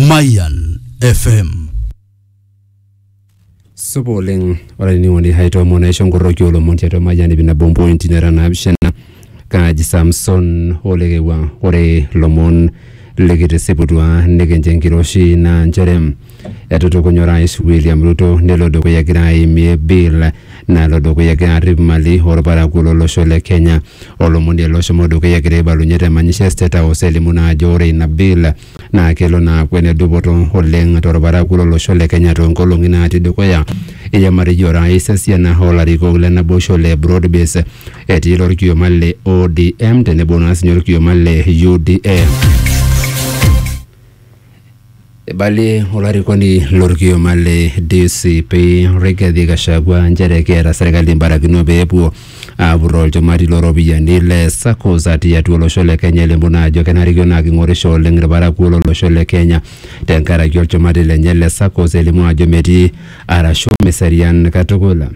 Mayan FM. supa oleng ore ainining'oni haitoomon aisho nkorroki olomon tiatua mayian ipi nabo mpointi nera naapishana kaaji samson olekewua ore lomon likitisiputua nikincho enkiroshi naa nchere Etutukunye Orais William Ruto nelo dukuya egira aimie bill nalo dukuya egira arrip mali olparakuo lolosho le Kenya. Olomoni ele oshomo dukuya egira aibalunye te manyisho e State House elimu naa ajo ore ina bill naa kelo naa aaku ene dupoto oleng tolparakuo lolosho le Kenya toonkolong'i naatii dukuya. Eimarie Orais esiana oo larikok le naboisho le Broad Base etii ilo olkioma le ODM tenebo naa siinye olkioma le UDA. Eibalie olarikoni lorkioma le DCP Rigathi Gachagua nchere keeta serkali embarakino pee epuo aapurroo olchumati looropiyiani le SACCOs atii atua olosho le Kenya elimu naa ajo kenarikino naa king'orisho oleng irparakuo lolosho le Kenya tenkaraki olchumati lenye le SACCOs elimu ajo metii arashu meserian katukul.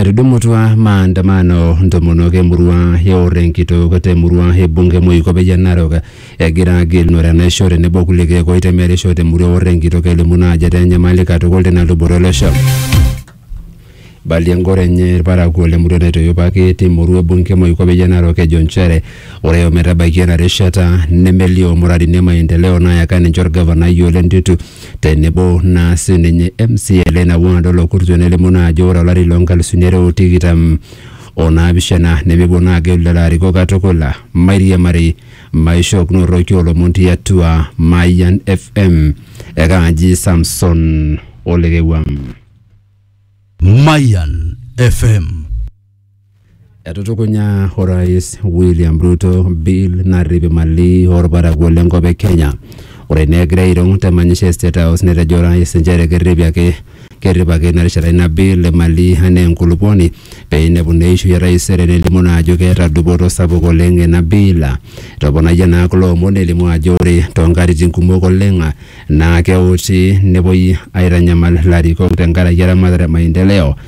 Etudumutua maandamano ntomonok emurua e Orenkitok te murua e bunge Moikope Narok egira agilunore enaisho tenebo kulie keek oitemerisho te murua e Orenkitok elimu naa ajo etaa enyamali katukul tina luboto olosho. Balie engoro enye ilparakuo le murua naitoyopaki te murua e bunge Moikope Narok ejo nchere ore ometabaiki ena rishata nemelio murarini e maendeleo naayaka ninche olgavanai Ole Ntutu tenebo naa sininye MCA leina ward olokurtue nelimu naa ajo ore olari loo nkalusuni are o tikitam o naapishana nemepuo naa agelu lelo arikok katukul. Mairiamari, maishookinoto irki oolomon tiatua Mayian FM. Ekaaji Samson Olekewuam. Mayan FM. Etutukunya Orais William Ruto bill narrip imali orparakuo lenkop e Kenya. Ore naa egira airung te manyisho e State House netejo orais nchere kerripi ake kerrip ake ina rishata ina bill imali anaa enkulupuoni pee einepu naa eishoi e taisere nelimu naa ajo keeta dupoto sapuk oleng ina bill. Etoponayie naa kulo omon elimu ajo ore toonkatitin kumok oleng naa keuti nepuoi aitanyamal ilarikok tenkaraki eramatare e maendeleo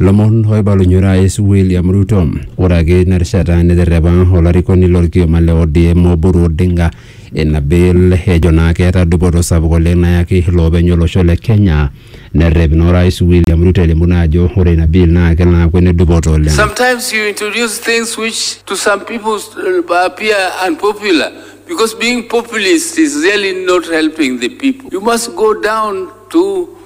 Lomon oibalunye orais William Ruto. Ore ake ina rishata neterrepa olarikoni lorkioma le ODM Oburu Odinga ina bill ejo naa keeta dupoto sapuk oleng nayaki iloopeny olosho le Kenya. Nerrep naa orais William Ruto elimu naa ajo ore ina bill naa kelo aaku ene dupoto oleng. Sometimes you introduce things which to some people uh, appear unpopular because being populist is really not helping the people. You must go down to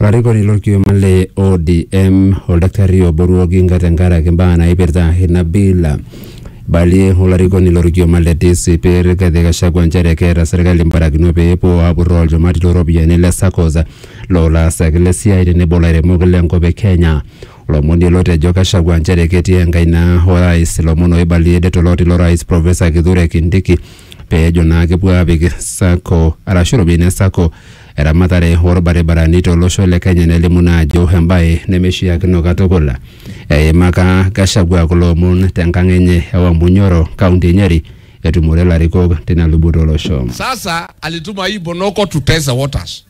Olarikoni lolkioma le ODM Oldakitari Oburu Oginga tenkaraki mbaa naipirta ina bill. Eibalie olarikoni lolkioma le DCP Rigathi Gachagua nchere keeta serkali mbarakinot pee epuo aapurroo olchumati loo ropiyiani le saccos loo laasak le siai tenebo lairemok le nkop e Kenya. Olomoni ele otejo Gachagua nchere ketii enkaina o rais lomon oibalie det oloti lo rais Professor Kithure Kindiki peejo naa kepuo aapik sacco arashu iropiyiani e sacco eramatare orbaribarani tolosho le Kenya nelimu naa ajo embae nemeishiakino katukul. Eimaka Gachagua kulo omon tenkang enye e Wamunyoro, kaunti e Nyeri etumore ilarikok tina luboto olosho. Sasa alituma hii Bonoko to test the waters.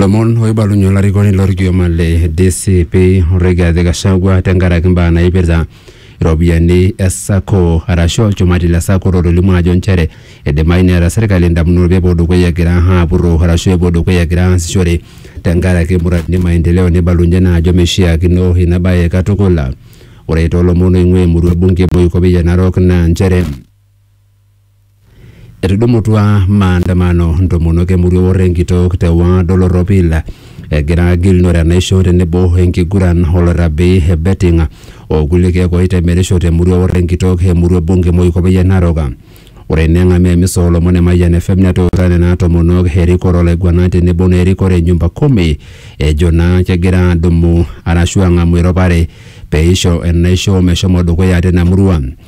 Lomon oibalunye olarikoni lorkioma le DCP Rigathi Gachagua tenkaraki mbaa naipirta iropiyiani e sacco arashu olchumati le sacco lotolimu ajo nchere eidimayu neeta serkali indamunot pepuo dukuya egira apurro arashu epuo dukuya egira aasishore tenkaraki muradini e maendeleo neibalunye naa ajo meishiakino ina baye katukul. Ore toolomon oing'ua emurua e bunge e Buikopia Narok naa nchere Etudumutua maandamano ntomonok emurua Ewor Enkitok te ward Oloropil egira agilunore enaisho tenebo enkiguran olorabi e betting o kulie keek oitemerisho te murua Ewor Enkitok e murua bunge Moikopei e Narok. Ore eneng'amu emisa oo lomon e Mayian FM netuutaa nena tomonok erikore olaiguanani tenebo naa erikore e nyumba kumi ejo naa kegira adumu arashu ang'amu eropare peisho enaisho meshomo dukuya tina murua.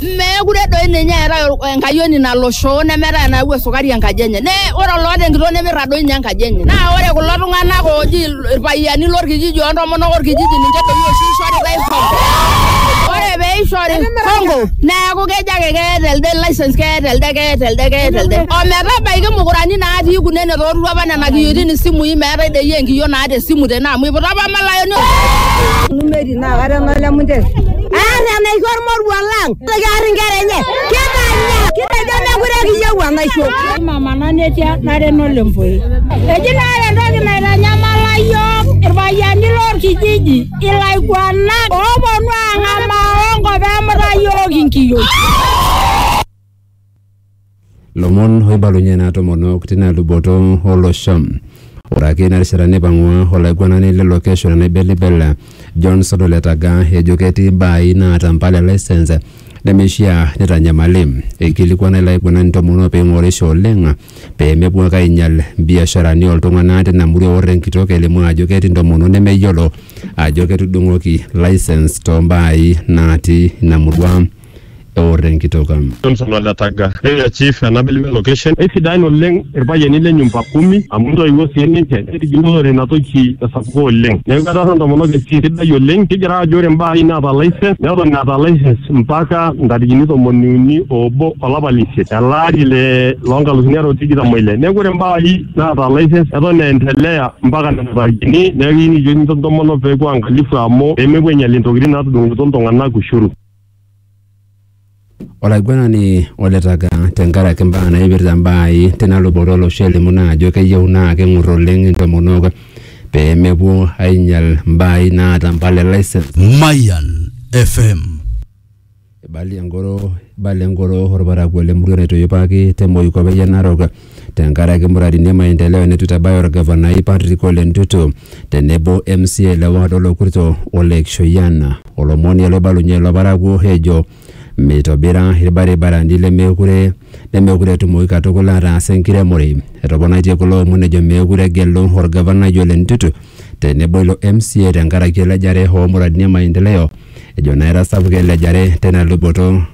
Meekure doi ninye eetae enkayioni nalo shoo nemeetae enayawua esukari enkaji enye. Ne ore oloota enkitoo nemirra doi ninye enkaji enye. Naa ore kulo tung'anak ooji irpayiani lorkijiji o ntomonok orkijiji ninche doi oshi ishoritae hongo. Ore pee ishori hongo neeku kejo ake keeta elde license keeta elde keeta elde keeta elde. O metabaiki mukurani natii kuna enetoorutua opa nena kiyioitin isimui meetae doi enkiyio naata esimu tene amu iputa opa malayani naa kata enaa le munte. Aar enaisho ormoruo lang. Nitoki aar inkera enye. Kitanya. Kitejo mekure kiyieu enaisho. Mama nanetia nareno lempoi. Eji naa ore entoki naitanyamala iyiook irpayiani lorkijiji ilaiguanak ooponu aang'amaa onkop emuta iyiook inkiyioi. Lomon oibalunye naa tomonok tina luboto olosho. Ore ake ina rishata neipang'ua olaiguanani lilo kesho le Naibelibel John Sodo Letaga ejo ketii baai naata mpala e lisens nemeishiaa neitanyamali. Eikilikuana ilo aiguanani ntomonok pee eing'orisho oleng pee mepuo ake ainyal mbiasharani oo ltung'ana tina murua eorro enkitok elimu ajo ketii ntomonok nemeyiolo ajo ketudung'oki lisens too mbaai naati ina murua. eor enkitoka. Johnson o Letaga. Area Chief ena Belbel location. Eisidain oleng ilpayiani le nyumba kumi amu intoiwuo sii ninche neitigilunore ina toki esapuko oleng. Neaku etaasa intomonok esiai sidai oleng. Kigira aajo ore imbaa are naata license neton eeta license mpaka ntarikini tomoni uni o obo o lapa le isiet ele ari le loo nkalusuni are o tikitam o ile. Neaku ore imbaa are naata license eton eendelea mpaka nena tarikini. Neaku kijoki intomonok pee epuo aangalifu amu pee mepuo ainyial intokitin naatudung'okito iltung'anak ushuru. olaiguanani oletaka tenkaraki imbaa naipirta imbaai tina luboto olosho elimu naa ajo keyieu naa keng'ur oleng intomonok pee mepuo ainyial imbaai naata impala e license Mayan FM. Ibala engoro ibala engoro orparakuo lemurua naitoyipaki te Moikope Narok tenkaraki muradini e maendeleo neitu eitabaya olgavanai Patrick Ole Ntutu tenebo MCA le ward Olokurto Ole Kishoyian olomoni loibalunye ilo parakuo ejo meitobira ilbaribarani lemekure nemekure etumoki katukul ataas enkiremore. Etoponaitie kulo omon ejo meekure egelu olgavanai Ole Ntutu tenebo ilo MCA tenkaraki elejare oo muradini e maendeleo ejo naa etasapuka elejare teina luboto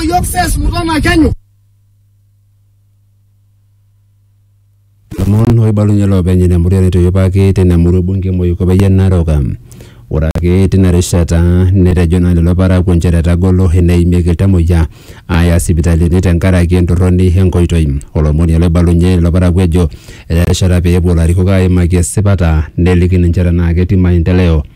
Yok ses buradan akenyo. lomon oibalunye loopeny ina murua netoyopaki tina murua bunge moiko peyie naroka ore ake tina rishata netejo naa lelo parakuo nchere etagolo eneimieki iltamoyia aaya sipitalini tenkaraki entorroni enkoitoi olomoni ele oibalunye lelo parakuo ejo eya erishata pee epuo ilarikok aimaki esipata neliki ninche tenaa ketii maendeleo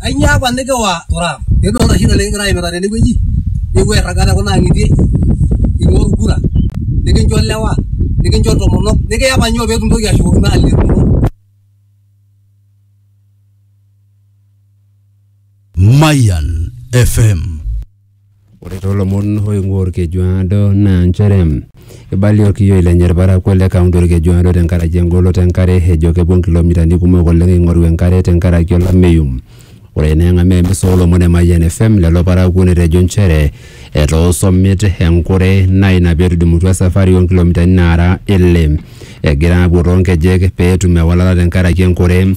Ainyoo apa nikiwa Turaam? Idolta oshi ina nikigira aimita tene wueji, nikipuo airraga te kuna ang'itie ing'ua olkura, nikincho ilewa, nikincho intomonok, nikiya apa inyoo pee kintoki ashukokino aleku? Mayan FM Ore too lomon oing'ua Olkejuado naa nchere eibalie olkiyioi lenye ilparakuo le kaunti Olkejuado tenkaraki engoloto e nkare ejo kepuo nkilomitani kumok oleng eing'oru enkare tenkaraki olameyu. Ore eneng'amu emisa oo lomon e Mayian FM lelo parakuo netejo nchere etoosho mit enkure naa ina pee etudumutua esafari oo nkilomitani naara ile egira aapuo too nkejek pee etum ewalata tenkaraki enkure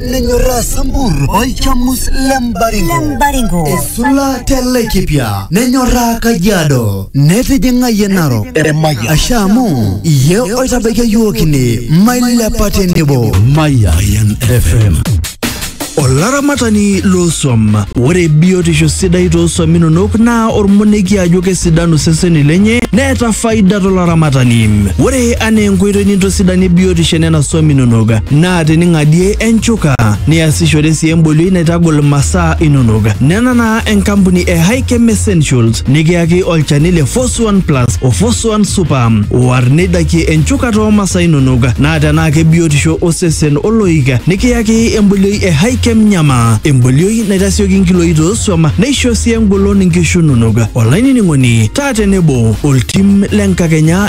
nenyorraa sambur olchamus le mbaringo Lembaringo. esula te laikipia nenyorraa kajiado netijing'ayie narok Eremaya. asha amu iye oitabaikia yiok ine mailepa tenebo Mayan FM. Olaramatani loosuam. Ore biotisho sidai toosuam inonok naa ormoneki ajo kesidanu seseni lenye neeta faida tolaramatani. Ore anaa enkoitoi nintosidanie biotisho enena suam inonok naa te ning'adie enchuka niasishore sii embolioi naitagol masaa inonok. Nena naa enkampuni e Hikem Essentials nikiyaki olchani le Force One Plus o Force One Super oar neidakie enchuka too masaa inonok naa tenaa kebiotisho osesen oloik nikiyaki embolioi e Hikem Nyama embolioi naitasioki nkiloi toosuam neisho sii engolon nkishu inonok. Olainining'oni taa tenebo oltim le nkakenya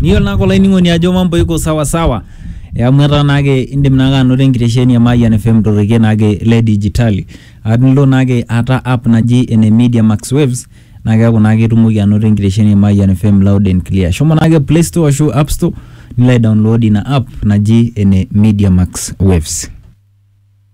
Niyiolo naake olainining'oni ajo mambo iko sawa sawa eh, amu etaa naake indim naake anoto enkitesheni e Mayian FM torrekie naake le dijitali aa tenilo naake aata app naji ene Media Max Waves naa keeku naake itumoki anoto enkitesheni e Mayian FM loud and clear. Shomo naake play store ashu app store nilo aidownload ina app naji ene Media Max Waves.